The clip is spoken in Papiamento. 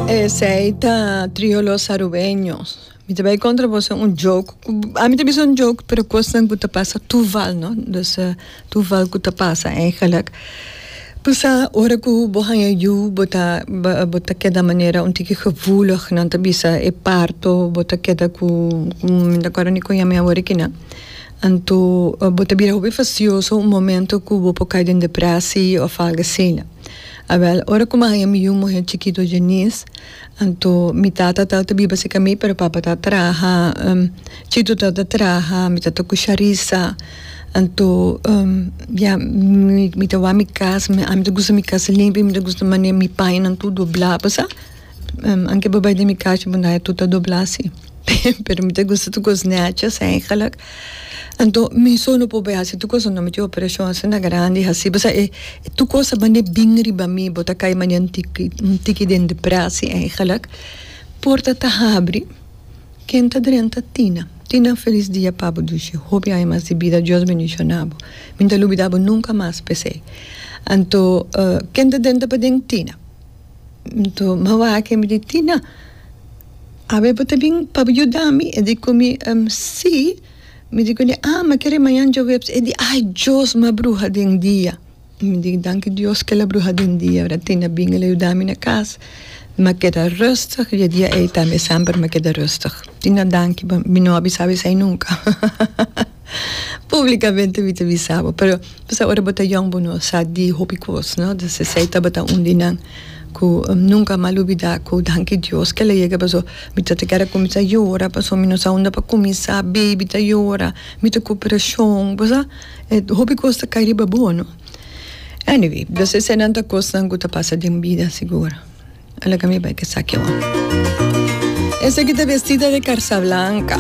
Esey ta trio los arubeños. Mi ta bay contra boso un joke. A mi ta bisa un joke, pero cosnan cu ta pasa toeval, no? Dus uh, toeval cu ta pasa eigenlijk. Pasa ora cu bo haya yu, bo ta, bo ta keda manera un tiki gevoelig, nan ta bisa e parto, bo ta keda cu, mi ta acuerdo ni con yami awor aki na. Anto bo ta bira hopi fastidioso un momento cu bo por cay den depresi of algo asina. Awel, ora ku mi a haña mi yu muhé chikitu Jenis, anto mi tata ta ta biba serka mi, pero papa ta traha, Chito ta ta traha, mi ta ta kusha risa, anto ya mi ta wak mi kas, ami ta gusta mi kas limpi, mi ta gusta manera mi pañanan tur doblá, pasá. Anke bo bai den mi kachi bo na e tuta dobla si pero mi ta gusta tur kos necha segelak anto mi so no por bai hasi tur kos no mi tin operacion asina grandi hasi pasa e tur kos ta bani bin riba mi bo ta kai manera un tiki un tiki den depresi eigenlek porta ta habri ken ta drenta tina tina felis dia pa bo dishi hopi aña mas di bida Dios bendiciona bo mi no ta lubida bo nunca mas pesey anto ken ta drenta paden tina. Tuma wak mi di Tina, awe bo ta bin pa bo yuda mi? E di ku mi, Em, si. Mi di ku el, Ah, m'a kere mañan djoweps. E di, Ai Dios, m'a bruha den dia. Mi di, Danki Dios ku el a bruha den dia, wèradat? Tina a bin, el a yuda mi na kas, m'a keda rùstig i e dia ei tambe semper m'a keda rùstig. Tina, danki, mi no a bisa esei nunka. Públikamente mi ta bisa bo, pero bo sa ora bo ta yòn bo no sa di hopi kos, no? Entonces esei tabata un di nan ku nunka mi a lubidá ku danki Dios ke el a yega pasobra mi tabata kuminsá yora pasobra mi no sa unda pa kuminsá, beibi ta yora, mi ta ku preshon, bo sa, e hopi kos ta kai riba bo, no? Anyway, entonces eseinan ta kosnan ku ta pasa den bida sigur. A loke mi bai ku esaki awor. Esaki ta Vestida de Karsablanka.